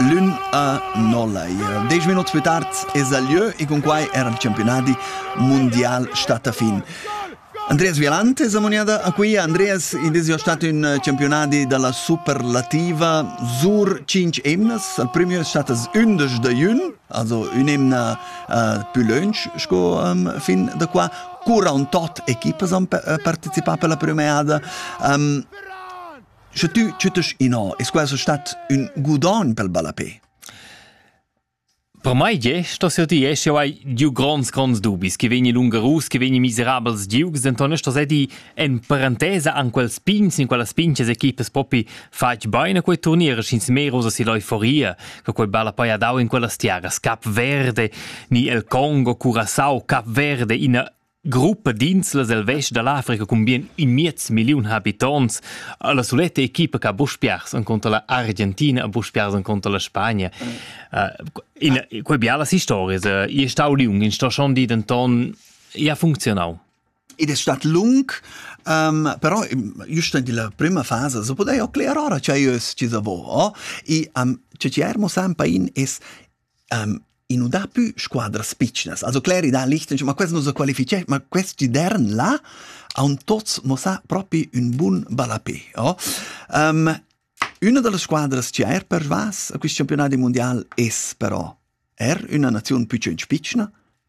L'ün a Nolai. Desch minuts plü tard esa lieu e cun quai eir il campiunadi mundial stat a fin. Andreas Vialant es amognada a quia. Andreas, in dis es stat ün campiunadi da la superlativa sur tschinch emnas. Il prüm es stat als ündesch da jün, also ün'emna uh, pü lönch sco um, fin da qua. Cura ün tot equipas han partecipà per la prüma jada. Um, Sche tü chüttisch inò, es quasi stat ün gudogn pel ballapè. Per mai ge, sto seu dir, esch jau hai giu gronds, gronds dubis, che vegni lungarus, che vegni miserabels giugs, denton sto sedi en parentesa an quels pigns, in quelles pinches equipas propi fatg bein a quei turnier, sch'ins merosa si l'euforia, che quel balla poi ha dau in quellas tiaras Cap Verde, ni el Congo, Curaçao, Cap Verde, ina Gruppa d'inslas el vest da l'Africa cun bien in miez milliun habitonts ha la soletta equipa che ha buspiars encunter la Argentina e buspiars encunter la Spagna. Uh, quei bialas historias. Uh, e stau liung in stagion di denton ia funzionau. Ed è stato lung, um, però giusto in la prima fase so potei oclear ora c'è io ci savo e um, c'è ermo sempre in es um, i nu dà pü squadras pitschnas. Also cler, i dà Liechtenstein, ma quest nu sa qualifichè, ma quest idern là haun tots mossà propi ün bun ballapé. Oh? Um, una da las squadras chi ha er persvas a quist campiunadi mundial es però er üna naziun pü tschönch pitschna,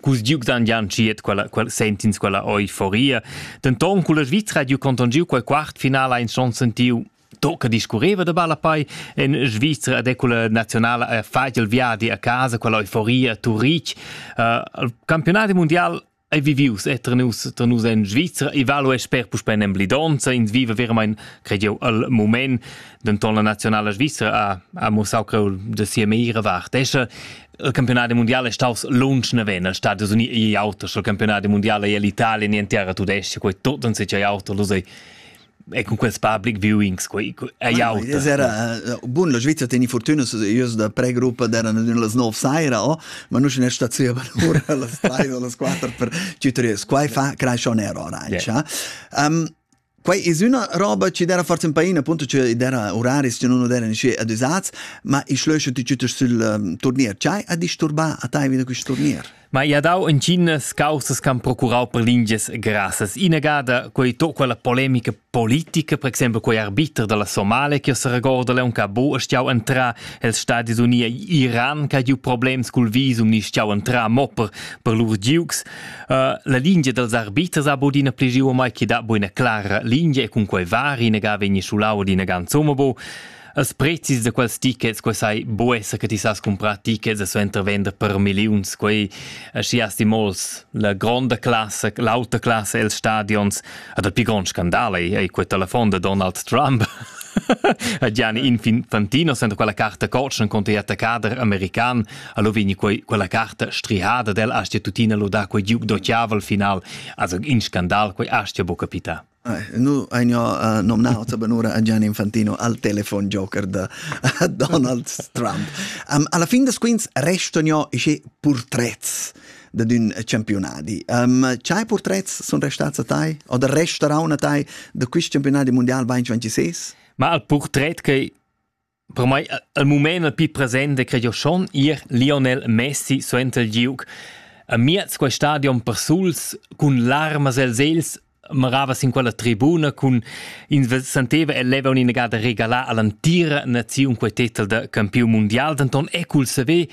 Cus giugdan Jan Tschiet quella, quella sentins quella euforia. Denton con la Svizra ha giu contongiu quel quart finala in schon sentiu tocca discurreva de Balapai en Svizra ed è quella nazionala a fare il viadi a casa quella euforia a Turic. Uh, il campionat mondial e vivius e trenus trenus en Svizra e valo è sper puspe in emblidonza ins vive veramente credo al moment denton la nazionala Svizra ha ha mossau creu de sia meira vart esce Il campionadi mundial è staus lunsch naven els Stadis Uni e auter, sche il campionadi mundial è l'Italia en entira Tudesca, quei tot en sei auter, lu sei e con quels public viewings quei ei auter. Era eh, bun, la Svizzera teni fortuna su io da pregruppa erano las 9 sera, oh, ma non ce ne staziva ora las 3 o las 4 per tutori. Quai fa crai schon error, yeah. um, Quei es üna roba chi d'era forsa ün pain appunto che i d'era oraris che nun d'eran schi adüsats, ma i schlöscha tü tüt sül turnier. C'hai a disturbà a tai vino quist turnier? Ma i ha dau intginas causas ch'han procurau per lingias grassas. Inagada quei to quella polemica politica, per exempel quei arbiter dalla Somalia che se regorda Leonca Bo a stiau entrar els Stati Uniti, Iran che ha giu problems cul visum ni stiau entrar mo per per lur giugs. Uh, la lingia dals arbiters ha bod ina pli giu mai che dat buina clara lingia e cun quei var ina ga vegni schulau ad ina ganzoma bo. Als prezis da quels tickets, quei sai bo esser che ti sas comprar tickets a suenter vender per milliuns, quei uh, schi has ti mols la gronda classe, l'auta classe els stadions, hat il più grond scandale ei, ei quei telefon da Donald Trump. Gianni Infantino sento quella carta coccia con te attaccader american Allo vegni quei quella carta strihada del astia tutina lodar quei giuc d'ochiaval final, also in scandal quei astia bo capita. Nu ein ja uh, nominat aber nur a Gian Infantino al telefon Joker da Donald Trump. Um, alla fin des quins restano ja ische portrets da dun campionadi. Um, c'hai portrets sono restati a tai o da resterà a tai da questi campionati mondiali 2026? Ma al portret che Per mei el mument el pli present e crei jeu schon ir Lionel Messi suenter il giug. Amiez quei stadion persuls cun larmas els els mirava sin quella tribuna cun ins senteva el leva un'inegada regalar all'entira naziun quei titel da campiun mundial denton ecul saver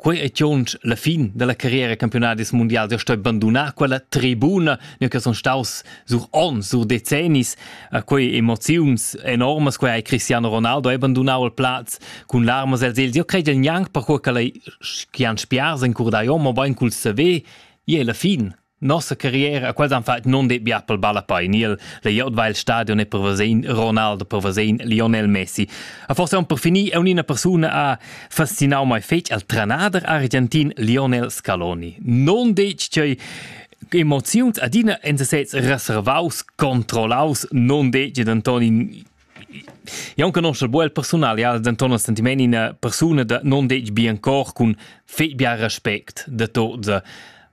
Quei ei tgeuns la fin dalla carriera campiunadis mundials. Jeu stoi bandunar quella tribuna, neu che sun staus sur ons, sur decennis. Quei emoziuns enormas, quei ei Cristiano Ronaldo ei bandunau il plaz cun larmas els els. Io credel gnanc per co ch'el ei schian spiars en curdai hom, mobein cul saver, ei la fin. Nossa carriera a quels han fatg non de bia pel ballapainiel. Layout va il stadion e Provasegn, Ronaldo Provasegn, Lionel Messi. A forse un per finir è un'ina persona ha fascinau mai fetg al tranader argentin Lionel Scaloni. Non detg che emoziuns adina en sesez reservaus, controllaus, non detg d'Antoni Io conosco il buel personal, ja, d'Antono Sentimen in persona da non detg bien cor cun fet bia respect de tot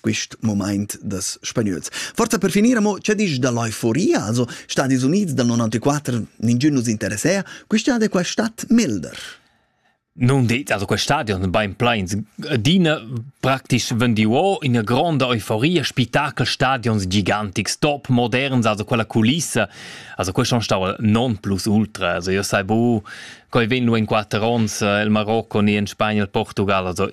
quist moment das spagnöls. Forza per finir amo che disch da l'euforia, also Stadis Units dal 94 ningün nus interessea, quistade qua stat milder. Non det also quel stadion bein plains dina praktisch vendiuo in a gronda euforia spitakel stadions gigantics top moderns also quella culissa also quel schon stau non plus ultra also io sai bu coi ven lu in quatter ons il Marocco ni in Spagna il Portugal also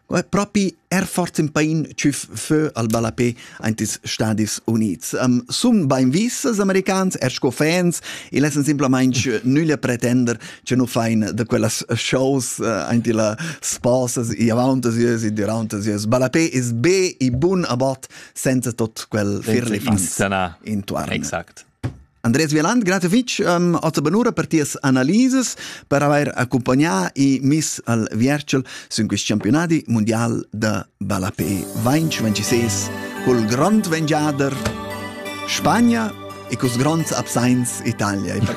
propi er forza in pain tschüf fö al ballapé aint ils Stadis Units. Um, sun bain vis als americans, er sco fans, e lassen simplamaing nüglia pretender che nu fain da quellas shows uh, aint illa sposas e avant sieus e durant sieus ballapé is be e bun abot senza tot quel firlifans intuarn. Exakt. Andres Wieland, gratifitg um, oz benura per tias analisas per haver accompagnà e miss al Vierchel sün quist campionadi mundial da ballapé 2026 col grond vengiader Spagna e cos gronds absains Italia. E per